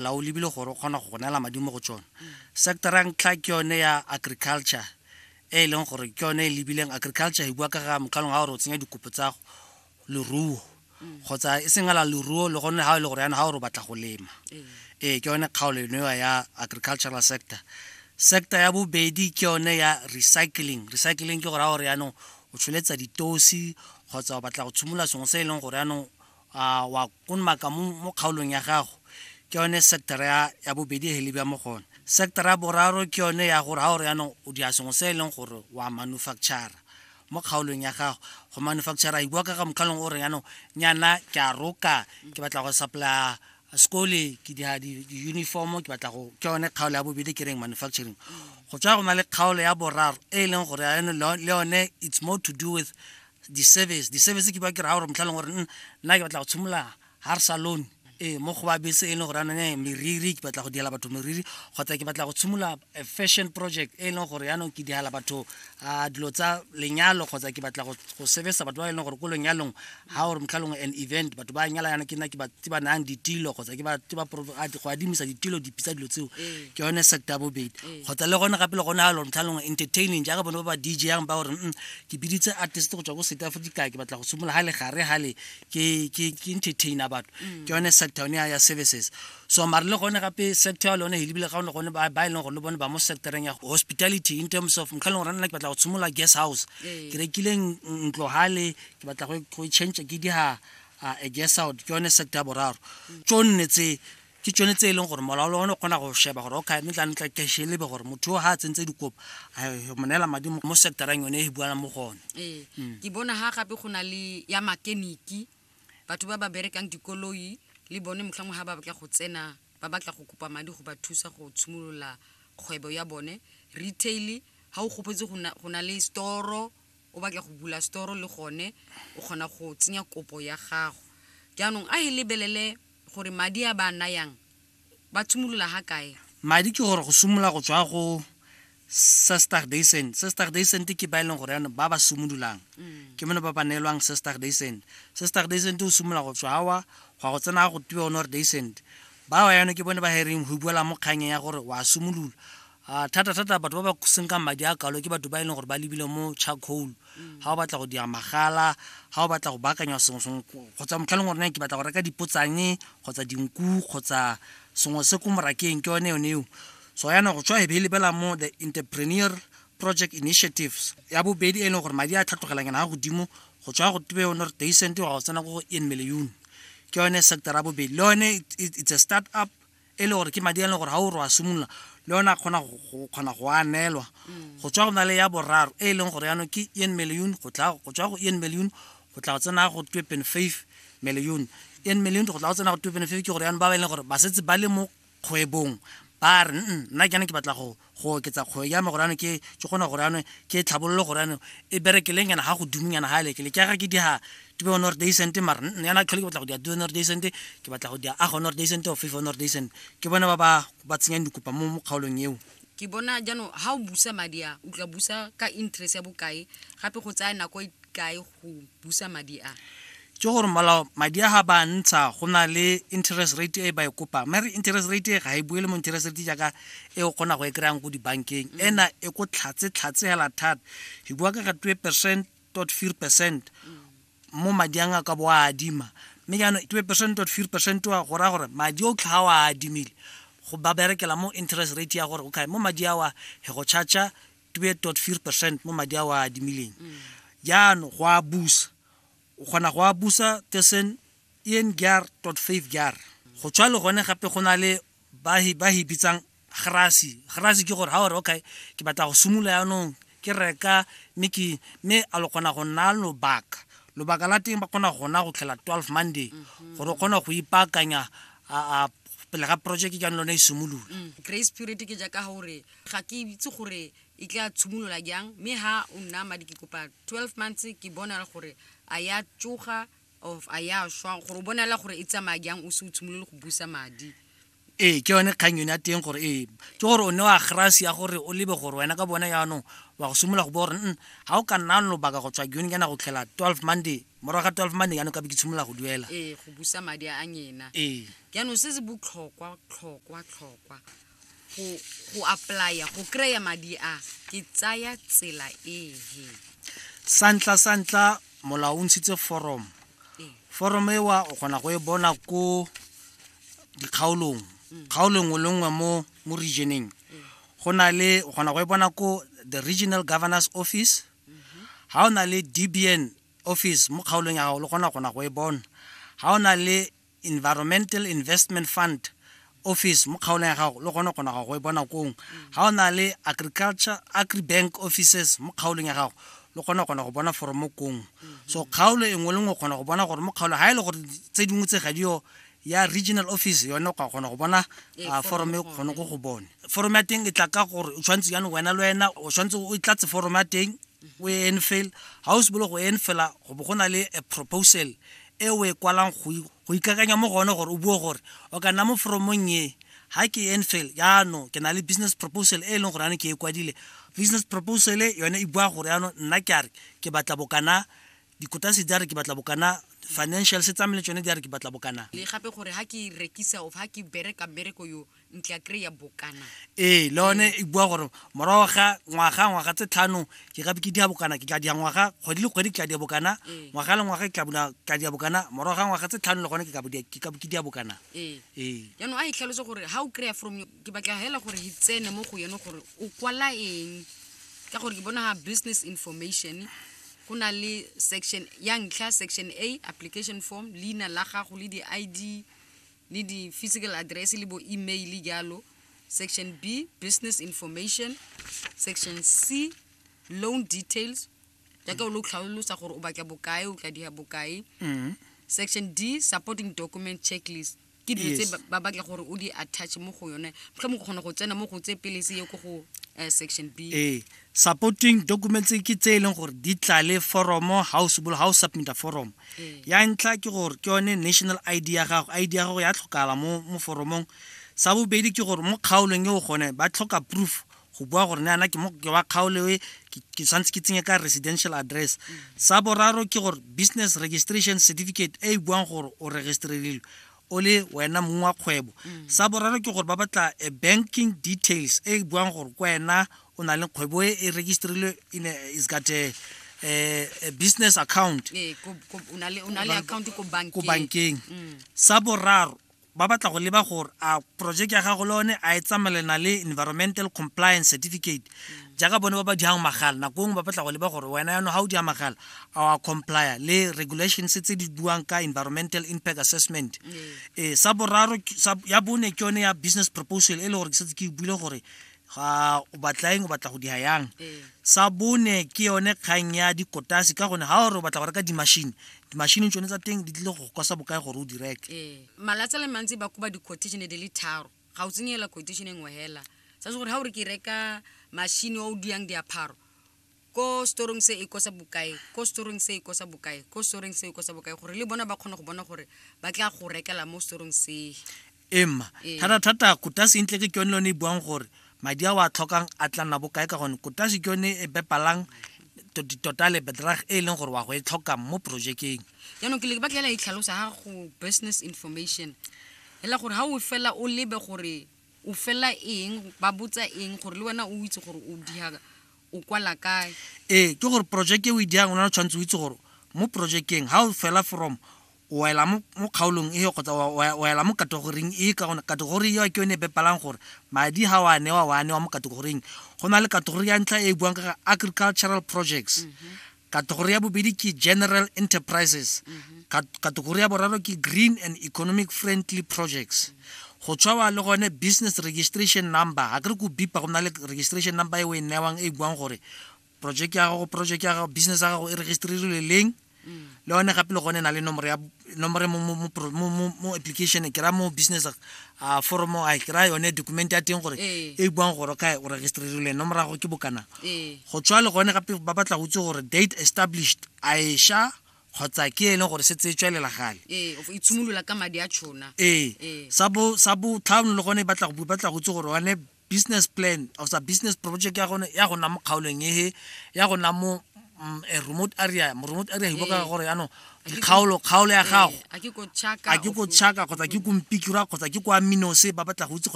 la o lebile gore o kgona go go neela madi mo go tsone sectora ntlha ke yone ya agriculture e e leng gore ke yone e lebileng agriculture e bua ka ga mokgalong ga gore o tsenya dikopo tsa leruo kgotsa e seng ala leruo le gonne ga e le gore yana ga gore o batla go lema ee ke yone kgaolo enewa ya agricultural sector sector ya bobedi ke yone ya recycling recycling ke gore ga gore yaanong o tsholetsa ditosi kgotsa o batla go tshimolola sengwe se e leng gore yaanong a wa konmaka mo kgaolong ya gago ke yone sectora ya bobedi e lebja mo gone sectora ya boraro ke yone ya gore ga o re yanong o dira sengwe se e leng gore wa manufactura mo kgaolong ya gago go manufactura e bua ka ga mokgalong o re yanong nyana ke a roka ke batla go supplya sekole ke dira di-uniform ke batla go ke yone kgaolo ya bobedi ke reng manufacturing go tswa go na le kgaolo ya boraro e e leng gore le yone it's more to do with di-service di-service ke ba ke raya gore motlha leng gore mm, nna ke batla go tshimolola har salon ee mo go ba bese e leng gore anone eh, meriri ke batla go diela batho meriri kgotsa ke batla go tshimolola eh, fashion project e leng gore yaanong ke diela batho a dilo tsa lenyalo kgotsa ke batla go sebesa batho ba e leng gore ko lenyalong ga gore motlhalong an event batho ba nyala yana ke nna ke ba tse ba nayang ditilo kgotsa ke ba tse ba go adimisa ditilo dipitsa dilo tseo ee. ke yone sector ya bobedi ee. kgotsa le gone gape le gone ga lore motlhalong entertaining jaaka bone ba ba dj yang ba gore mm, ke biditse artist go tswa ko south africa ke batla go simolola ga le gare gale ke entertainer batho mm. ke yone sector yone ya services so mare le gone gape sector ya lone helebile ga one gone ba e leng gore le bone ba mo sectoreng ya hospitality in terms of mokga e leng gore nna ke batla go simolola guest house ee. ke rekileng ntlo gale ke batla go e change ke diga a guest out ke yone sector ya boraro mm. tso nne tse ke tsone tse e leng gore molaolo one o kgona go sheba gore okay mme tla ntla ke shelebe gore motho yo ga a tsentse dikopo mo neela madi mo sectorang yone e buana mo gone ee mm. ke bona ga gape go na le ya makeniki batho ba ba berekang dikoloi le bone motlhangwe ga ba batla go tsena ba batla go kopa madi go ba thusa go tshimolola kgwebo ya bone retail ga o gopotse go na le storo o batla go bula storo le gone o kgona go tsenya kopo ya gago jaanong a e lebelele gore madi a ba a nayang ba tshimolola ga kae madi ke gore go simolola go tswa go sestar daycent sestar daycent ke ba e leng gore yanong ba ba simololang mm. ke mone ba ba neelwang sestar daycent sestar daycent o simolola go tswa awa gwa go tsena go tiwa one gore daycent ba wa yone ke bone ba hereng go buela mo kganyeng ya gore wa simolola a thata-thata batho ba ba senkang madi a kalo ke batho ba e leng gore ba lebile mo charcoal mm. ga o batla go dira magala ga o batla go baakanya sengwe sengwe kgotsa motlha leng gorene ke batla go reka dipotsane kgotsa dinku kgotsa sengwe se ko morakeng ke yone yone eo so yana go tswa e be e lebela mo the entrepreneur project initiatives ya bobedi e leng gore madi a tlhatlhogelang yana ga godimo go tswa go tebe one re teisente wa go tsena ko go en million ke yone sector ya bobedi le yone it's a start up e le gore ke madi a leng gore ga o re wa simolola le yone a kgona go kgona go a neelwa mm. go tswa go na le ya boraro e e leng gore yaanong ke en million go tla go tswa go en million go tla go tsena go two point five million en million go tla go tsena go two point five ke gore yaanong ba ba e leng gore ba setse ba le mo kgwebong ba re nna ke ne ke batla go go oketsa kgwebo ya me gorano ke ke gona gorano ke tlhabololo gorano e berekeleng yana ga go dumeng yana ga elekele ke ga ke di ga tube o nord decent mara yana tlhole ke batla go di a due nord decent ke batla go di a ago nord decent o fifa nord decent ke bone ba ba ba tsenyang dikopa mo mo kgaolong eo ke bona jaanong ga o busa madi a o tla busa ka interest ya bokae gape go tsaya nako e kae go go busa madi a ke gore molao madi a ga ba ntsha go na le interest rate e ba e kopang mare interest rate e ga e buele mo interest rate jaaka e o kgona go e kry-ang ko dibankeng mm. ena e ko tlhatse tlhatse hela thata e bua ka ga twe percent tot fear percent mm. mo madi a ka bo a adima mme jaanong twe percent tot fear percent wa go raya gore madi o tlha o a adimile go ba berekela mo interest rate ya gore okay mo madi a wa he go charge 2.4 percent mo madi a o a adimileng jaanong go a busa o kgona go a busa tussen een jaar tot five jaar go tshwa le gone gape go na le ba e bitsang grasi grasi ke gore ga ore okay ke batla go simolola yaanong ke reka mme ke mme a lo kgona go nna lobaka lobaka la teng ba kgona gona go tlhela twelve monday mhm. gore o kgona go ipaakanya pele ga project jaanong lone e simolola mm, grace period ke jaaka gore ga ke itse gore e tla tshimolola jang mme ha o nna madi ke kopa 12 months ke bonala gore a ya tsoga of a ya shwa gore o bonala gore e tsamaya jang o se o tshimolole go busa madi ee ke yone kgang yone ya teng gore ee ke gore o ne wa grase ya gore o lebe gore wena ka bona yaanong wa go simolola go bo gore n ga o ka nna lobaka go tswa jone kana go tlhela 12 monday morago ga 12 monday yaanong ka be ke tshimolola go duela ee go busa madi a nyena ee jaanong se se botlhokwa tlhokwa tlhokwa go go apply-a go kry-a madi a ke tsaya tsela ee santla santla molao o ntshitse forum forum ewa o kgona go e bona ko dikgaolong mm. kgaolo nngwe le nngwe mo mo regioneng mm. go na le o kgona go e bona ko the regional governors office mm-hmm. ga o na le dbn office mo kgaolong ya gago le kgona kgona go e bona ga o na le environmental investment fund office mo kgaolong ya gago le gone o kgona go e bona kong ga o na le agriculture agribank offices mo kgaolong ya gago le kgona kgona go bona foromo kong so kgaolo e nngwe le nngwe kgona go bona gore mo kgaolo ga e le gore tse dingwe tse ga dio ya regional office yone o ka kgona go bona ee, ah, foromo e kgone go go bone foromo ya teng e tla ka gore o tshwanetse jane wena le wena o tshwanetse o tlatse foromo ya teng o e enfail ga o se bolo go enfela go bo go na le a proposal e o e kwalang go ikakanya mo go one gore o bue gore o ka nna mo foromong e ha ke enfail yaanong ke na le business proposal e e leng gore yane ke e kwadile business proposal yone e bua gore yaanong nna ke a re ke batla bokana dikotase di a re ke batla bokana financial se tsamele tsone di a re ke batla bokana le gape gore ha ke rekisa of ha ke bereka mmereko yo ntle a kry-a bokana ee le one e bua gore morago ga ngwaga ngwaga tse tlhano ke gape ke dia bokana ke tla dia ngwaga kgwedi le kgwedi ke tla dia bokana ee. ngwaga le ngwaga ke tla bula tla dia bokana morago ga ngwaga tse tlhano le gone ke kabodia ke kabe ke dia bokana ee. ee jaanong a e tlhalose gore ga o kry-a from ke batla fela gore e tsene mo go yone gore o kwala eng ka gore ke bona ga business information go na le section ya ntlha section a application form leina la gago le di-id le di-physical address le bo email jalo section b business information section c loan details jaaka o lo tlhalosa gore o batla bokae o tla diga bokae mm. section d supporting document checklist ke dilo tse ba batla gore o di attach mo go yone tlho mo go kgona go tsena mo go tse pele se ye ko go eh, section b ee supporting documents ke tse e leng gore di tlale foromo ga o sebolo ga o submita foromo ee. ya ntlha ke gore ke yone national id ya gago id ya gago ya tlhokala mo mo foromong sa bobedi ke gore mo kgaolong e o gone ba tlhoka proof go bua gore ne ana ke mo ke wa kgaolo e ke tshwanetse ke tsenye ka residential address mm. sa boraro ke gore business registration certificate e e buang gore o registrelilwe o le wena mong wa kgwebo mm. sa boraro ke gore ba batla a banking details e e buang gore ke wena o na le kgwebo e e registerilwe in a, is got a, a, a business account Ee, ko- ko- o na le- o na le account ko ko bankeng bankeng sa boraro ba batla go leba gore a project ya gago le one a e tsamaelana le environmental compliance certificate jaaka bone ba ba diang magala nako ngwe ba batla go leba gore wena yano ga o dia magala a wa comply le regulations tse di buang ka environmental impact assessment ee sa boraro ke- sa- ya bone ke yone ya business proposal e le gore ke setse ke e buile gore ga o batla eng o batla go diha yang ee. sa bone ke yone kgang ya dikotase ka gone ga o re o batla go reka dimashini dimashini tsone tsa teng di tlile go kosa bokae gore o di reke ee. malatsi le mantsi ba koba di-quotation di le tharo ga o tsenyela quotation e nngwe hela sa se gore ga o re ke reka mashini o o diyang diapharo ko storong se e kosa bokae ko storong se e kosa bokae ko storong se e kosa bokae gore le bona ba kgone go bona gore ba tla go rekela mo storong se emma ee. thata-thata kotase ntle ke yone lone e buang gore madi a o a tlhokang a tla nna bokae ka gone kotase ke yone e bepalang ditotale bedrag e e leng gore wa go e tlhokang mo projekeng jaanong ke le ba tlela e tlhalosa ga go business information fela gore ga o fela o lebe gore o fela eng ba botsa eng gore le wena o itse gore o diaga o kwala kae ee ke gore projeke o e dirang o na le tshwanetse o itse gore mo projekeng ga o fela from o ela mo kgaolong e kgotsa o ela mo kategoring e ka gone kategori eo ke yone e bepalang gore madi ga o a newa o a newa mo kategoring go na le kategori ya ntlha e e buang ka agricultural projects mm -hmm. Kategori ya bobedi ke general enterprises. Mhm. Kategori ya boraro ke green and economic friendly projects. go tshwawa le gone business registration number ga kere ko bipa go na le registration number e o e newang e buang gore project ya gago project ya gago business ya gago e registerilwe leng mm. le one gape le gone e na le nomoro ya nomore mo mo mo pro- mo- mo- mo application ke ra mo business a foromo a ke ra yone document ya teng gore Ee. e buang gore kae o registerilwe nomorago ke bokana ee go tswa le gone gape ba batla go itse gore date established a e sha kgotsa ke e leng gore se tse tswelela gale ee o itshimolola ka madi a tšhona ee Ee. sa bo sa bo tlhano le gone e batla go bu- batla go itse gore one business plan osa business project ya gone ya gona mo kgaolong ehe ya gona mo mm, a remote area mo remote area hiboka ka gore yaanong kgaolo kgaolo ya gago a ke ko chaka kgotsa ke ko mpikira kgotsa ke kwa minose ba batla go itse